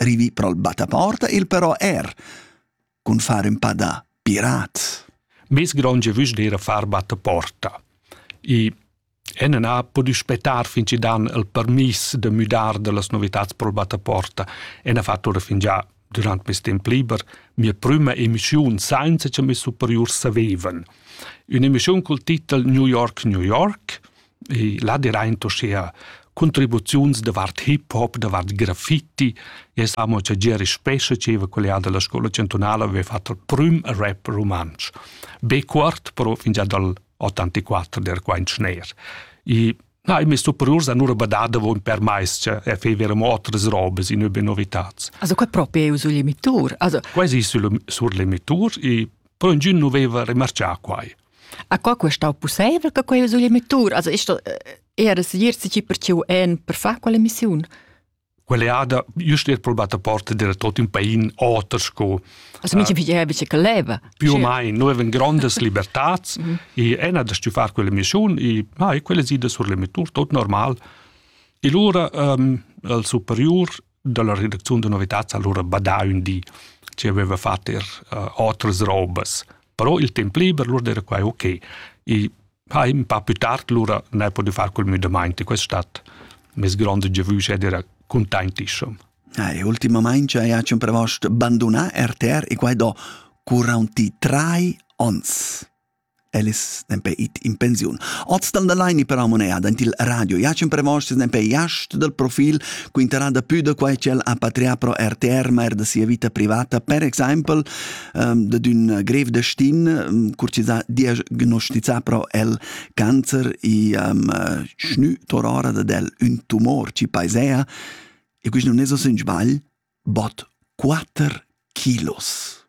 Rivi pro il battaporta il però er, cun far un pa da pirat. Bis gronge vusch d'era far battaporta. I Enen ha podiu spetar fin ci dan il permis de müdar de las novitats pro il battaporta. En ha fatto ora fin già durant mes temp liber mia prima emissiun sainza che mes superiurs savevan. Un'emissiun col titel New York, New York, e là diraint uschea contribuziuns davart hip hop, davart graffiti. Jes amo cha Gieri Spescha dscheva quella da la scola chantunala aveva fatto il prüm rap rumantsch. Be cuort, però fingià dal 84 der quaint schner. E na, i messo priors a nur badada von per mais che e feverem otras robes in über novitats. Also qua proprio eu sul emitur, also quasi sul sur l'emitur e però ingün nu veva remarchà quai. A co quest stau pusseivel che quei vesuli mettur? Also ist da era segir si per ciu en per far quella missiun? Quell'eada just er probata porta del tot in pain oter sco Also mincha piglieva bice che leva. più o mai noi avem grandes libertats Mhm. e ena da stu far quella missiun e ah, e quelle side sur le mettur tot normal e lura um, al superior dalla redacziun da novitads allora badà ün di che aveva fatto er uh, otras robas. Però il tempo liber lura era quai ok. E ha un po' più tardi lura ne posso fare quel müdamenti. Questa stadt mes grande giavüsch era contentissim. Eh, ultimamente hai un prevost abbandonato RTR e quai do 43 ons. Ellis nempe it in pensiun. Oz dal da laini però moneda dent il radio. Ja c'empremostas nempe iast dal profil quinterà da pü da quai ch'el ha patrià pro RTR, ma er da sia vita privata, per exaimpel um, da d'ün grev destin, um, cur chi s'ha diagnosticà pro el cancer e um, schnü torora dad el ün tumor chi paisea. E quist nun es o sün sbagl, bot 4 kilos.